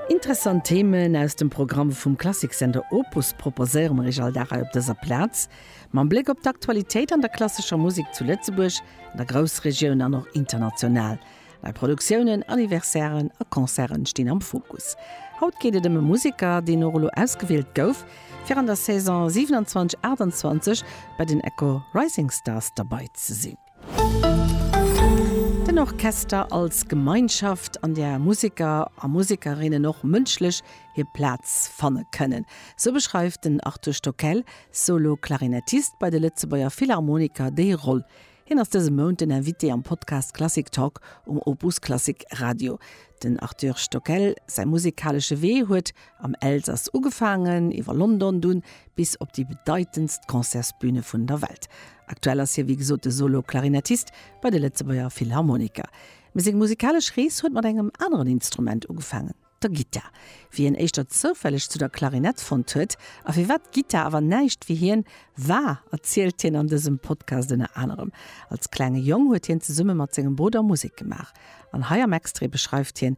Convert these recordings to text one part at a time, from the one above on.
Interessant Themen aus dem Programm vum Klassiksender Opus proposéiere mer Iech all Dag hei op dëser Plaz. Mam Bléck op d'Aktualitéit an der klassescher Musek zu Lëtzebuerg, an der Groussregioun an och international. Nei Produktiounen, Anniversairen a Concerte stinn am Fokus. Haut geet et ëm e Museker, deen och elo ausgewielt gouf, fir an der Saison 27, 28 bei den Echo Rising Stars derbei ze sinn. Den Orchester als Gemeinschaft, an där Museker a Musekerinnen och mënschlech hir Plaz fanne kënnen, sou beschreift den Arthur Stockel, Solo-Klarinettist bei de Lëtzebuerger Philharmoniker, déi Roll. Hien ass dëse Mount den Invité am Podcast Klassik Talk um Opus Klassik Radio. Den Arthur Stockel säi musekalesche Wee huet Am Elsass ugefaangen, iwwer London dunn bis op déi bedeitendst Concertsbüne vun der Welt. Aktuell ass hie wéi gesot de Solo-Klarinettist bei de Lëtzebuerger Philharmoniker. Mee seng musikalesch Rees huet mat engem aneren Instrument ugefaangen, der Gittar. Wéi hien éischter zoufälleg zu der Klarinett fonnt huet a firwat d'Gittar awer näischt fir hien war, erzielt hien an dësem Podcast ënner anerem. Als klenge Jong huet hien zesumme mat sengem Brudder Musek gemaach an hei am Extrait beschreift hien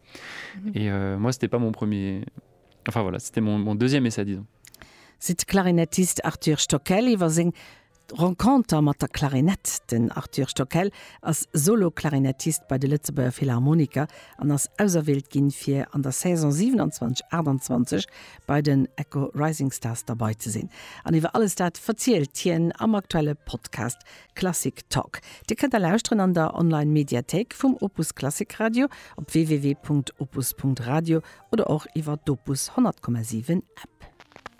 Et euh, moi c'était pas mon premier, enfin voilà, c'était mon, mon deuxième essai disons. Seet de Klarinettist Arthur Stockel iwwer seng Renconter mat der Klarinett. Den Arthur Stockel ass Solo-Klarinettist bei de Lëtzebuerger Philharmoniker an ass auserwielt ginn, fir an der Saison 27, 28 bei den Echo Rising Stars derbei ze sinn. An iwwer alles dat verzielt hien am aktuelle Podcast Klassik Talk, Dir kënnt e lauschteren an der Online Mediathéik vum Opus Klassik Radio, op www.opus.radio oder och iwwer d'Opus 100,7 App.